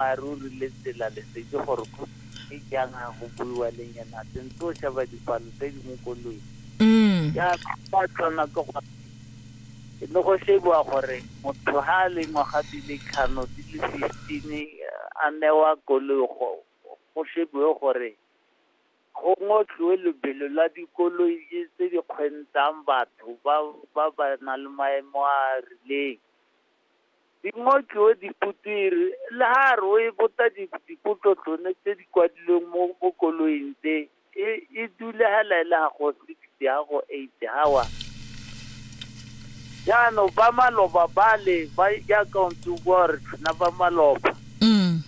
boammaaruri le tsela lesedi gore go e jang a go buiwa le nyena sentse o sheba dipalo tse di mo koloing mm. ya ba tsona ke go e le go shebiwa gore motho ga a le ngwaga di le tlhano di le fifteen a newa koloi go go shebiwe gore go ngotliwe lebelo la dikoloi tse di kgwentang batho ba ba ba na le maemo a a rileng di ngotliwe diputiri le ha re o e bota dipotlo tsone tse di kwadilweng mo mo koloing tse e e dule ha laela ha go six ya go eight hawa jaanong ba maloba bale ba jaaka o ntse o bua gore tlhona ba maloba mm.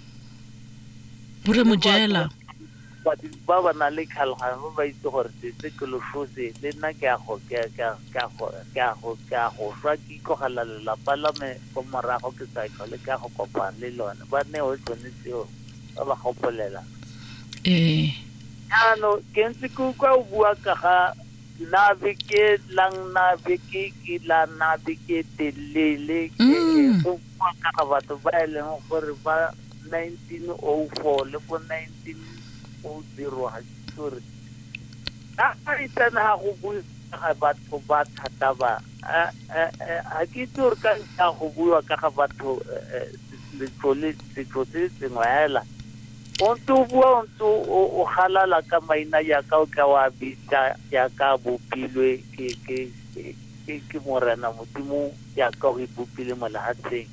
Borre Mojela. Badiri ba ba nang le tlhaloganyo ba ba itse gore sese ke loshose, le nna ke a go, ke, ke, ke a go, ke a go, ke a go swa ke itlogela lelapa la me ko morago ke sa tlhole ke a go kopana le lone. Ba newe tsone tseo, ba ba gopolela. Ee. Jaanong, ke ntse ke utlwa o bua ka ga nabe ke lang nabe ke ke la nabe ke telele ke Mm. go Ka batho ba e leng gore ba 1904 le bo 1900 ga ke gore ka ga itsane ga go bue ga batho ba thata ba ga ke itse gore ka ntlha go buiwa ka ga batho letlole setso se sengwe hela o ntse o bua o ntse o galala ka maina yaka o tla wa bitsa yaka bopilwe ke ke ke morena modimo jaaka o e bopile mo lehatsheng.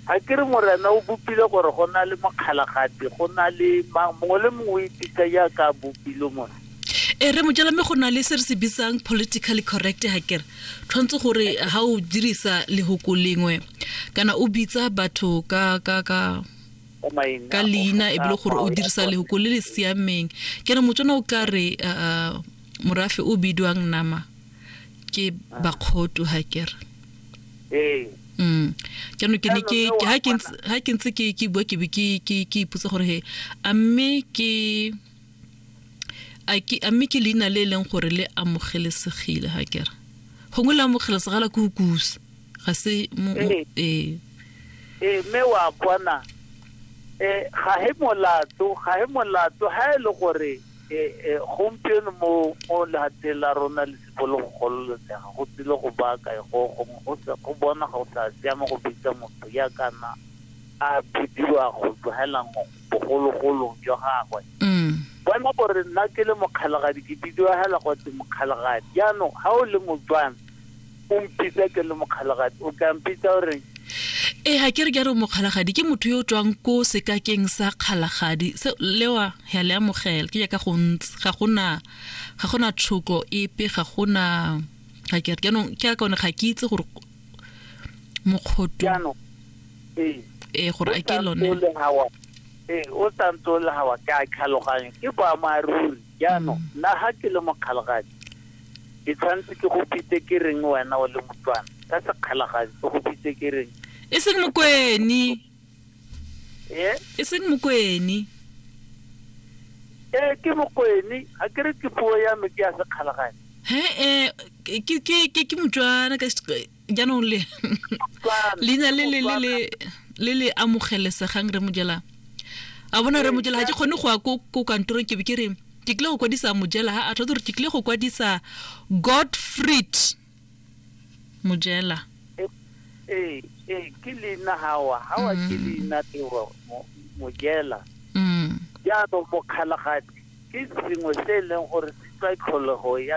Ga ke re Morena o bopile gore go na le mokgalagati, go na le mang, mongwe le mongwe o ipitsa jaaka a bopilwe mona. E re mojala mme go na le se re se bitsang politically correct ga kere tshwanetse gore ga o dirisa lehoko lengwe kana o bitsa batho ka ka ka ka leina e bile gore o dirisa lehoko le le siameng ke re motswana o tla re morafe o bidwang nama ke bakgotu ha ke re ee mm jaanong ke ne ke ke- ha ke ntse- ha ke ntse ke ke bua ke be ke ke ke ipotsa gore he a mme ke a ke a mme ke leina le e leng gore le amogelesegile ha ke re gongwe le amogelesegala ke go kusa ga se mo- mo- Ee. ee ee mme wa bona um ga he molato ga he molato ga e le gore e e gompieno mo mo lehateng la rona le sipo le go gololesega go tsile go baaka e go go go se go bona go sa siama go bitsa motho ya kana a bidiwa go tlogelang bogologolong jwa gagwe mm. bona gore nna ke le mokgalagadi ke bidiwa hela go tse mokgalagadi jaanong ga o le motswana o mpitsa ke le mokgalagadi o tla mpitsa o reng e ga ke re ke a re mokgalagadi ke motho yo o tswang ko sekakeng sa kgalagadi se lewa ya le amogela ke jaaka go ntse ga gona ga gona tshoko epe ga gona ga ke re jaanong ke a kaone ga ke itse gore mokgoto jaanong ee ee gore a ke lone ee o santse o le gawa ke a tlhaloganya ke boammaaruri Jaanong, nna ga ke le mokgalagadi, ke tshwanetse ke go bitse ke reng wena o le motswana? Ka sekgalagadi, ke go bitse ke reng? e seng mokoeni Ee, e seng mokoeni ee, ke mokoeni. Ga ke re ke puo ya me ke ya sekgalagadi. he-e ke- ke ke- ke motswana ka se- jaanong le leina le le le le le amogelesegang re mojela a bona re mojela ga ke kgone go ya ko ko kantorong ke be ke re ke tlile go kwadisa mojela ha a tlhotse gore ke tlile go kwadisa godfried mojela ee ee ke leina gawa gawa ke mm. leina tewa mojela mm. jaanong mokgalagadi ke sengwe se e leng gore se tlwa tlholego ya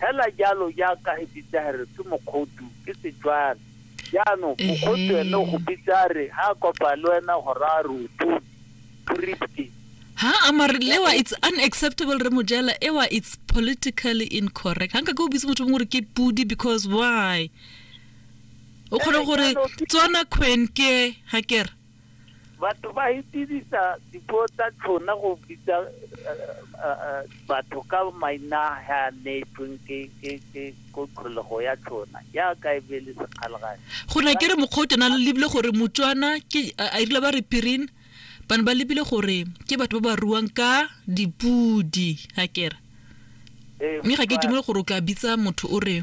Hela jalo jaaka e bitsa re ke mokgodu ke Setswana. Jaanong mokgodu ene o go bitsa re ha a kopa le wena go raya re o puripke. ha amare lewa it's unacceptable re mojela ewa it's politically incorrect hanka ke o bitse motho mongwe gore ke pudi because why o kgone gore tswana kgwenke ga kere batho ba itirisa dipuo tsa tshona go bitsa batho ka maina ha neetsweng ke ke ke ko tlholego ya tshona jaaka e be le sekgalagane go na ke re mokgwa o tena le lebile gore motswana ke a irile ba re pirin ba ne ba lebile gore ke batho ba ba ruang ka dipudi ga kere mme ga ke dumele gore o ka bitsa motho o re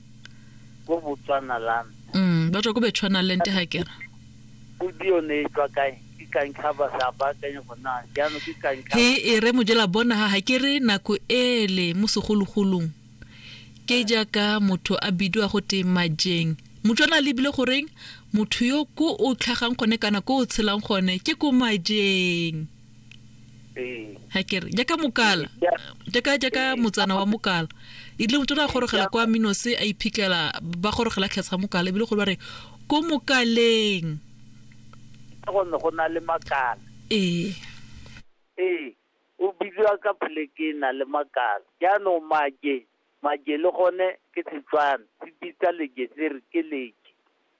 ko botswana land mm, ba tswa ko betswanaland ga ke re audio ne e tswa kae ke kantlhaba sa baakanye go na jaanong ke kantlhaba he e re mojela bona ga ke re nako ele mo segologolong ke jaaka motho a bidiwa go te majeng motswana a lebile goreng motho yo ko o tlhagang gone kana ko o tshelang gone ke ko majeng ee ga ke re jaaka mokala jaaka jaaka motsana wa mokala e le motho o ne a gorogela kwa minose a iphitlhela ba gorogela tlhatsha mokala ebile go ba re ko mokaleng ka gonne go na le makala ee ee o bidiwa ka poleke e na le makala jaanong maje maje le gone ke setswana se bitsa leje se re ke leje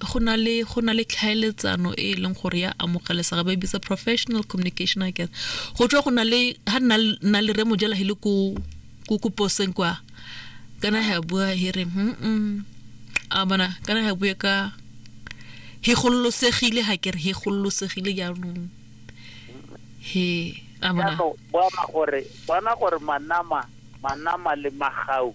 go na le go na le tlhaeletsano e e leng gore ya amogelesega ba e bitsa professional communication i guess go tswa go na le ha nna nna le re mojela hele ko ko ko poseng kwa kana ha bua here mm a bona kana ha bua ka he gololosegile ha ke re he gololosegile jaanong he a bona bona gore bona gore manama manama le magau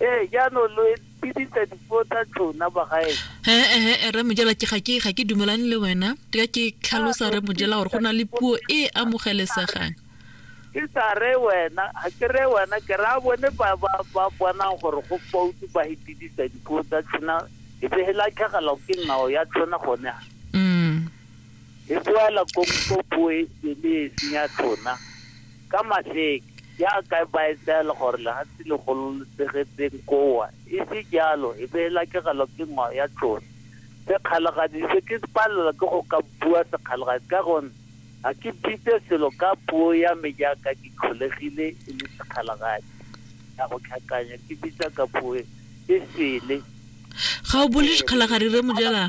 ee jaanong lo epidisa dipuo tsa tsona bagae ee re mojela ke ga ke ga ke dumelane le wena ka ke tlhalosa re mojela gore go na le puo e amogelesegang ke sa re wena ga ke re wena ke ra bone ba bonang gore go foutu ba epidisa dipuo tsa tsona e be e latlhegelwa ke ngao ya tsona gone ga mm. e boela ko puo e le e senya tsona ka maseke jaaka ba etsaela gore lehatshe le gololosegetseng kowa e se jalo e be e lakegelwa ke ngwao ya tlosa sekgalagadi se ke palela ke go ka bua sekgalagadi ka gonne ga ke bitse selo ka puo ya me jaaka ke tlholegile e le sekgalagadi ya go tlhakanya ke bitsa ka puo e sele ga o bole dikgalagadi re mojela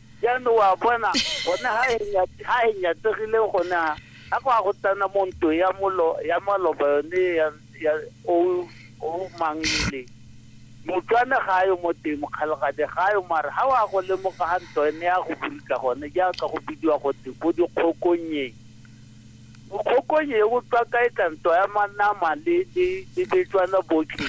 jaanong wa bona gone ha e nya- ha e nyatsegile gone ha a kwa go tsena mo nto ya molo ya maloba yone ya ya o o mangile motswana ga yo mo teng mokgalagadi ga yo mare ha wa go lemoga ga nto ene ya go burika gone jaaka go bidiwa go teng bo dikgokonyeng bokgokonye e botswa kae ka nto ya manama le le le betswana botlhe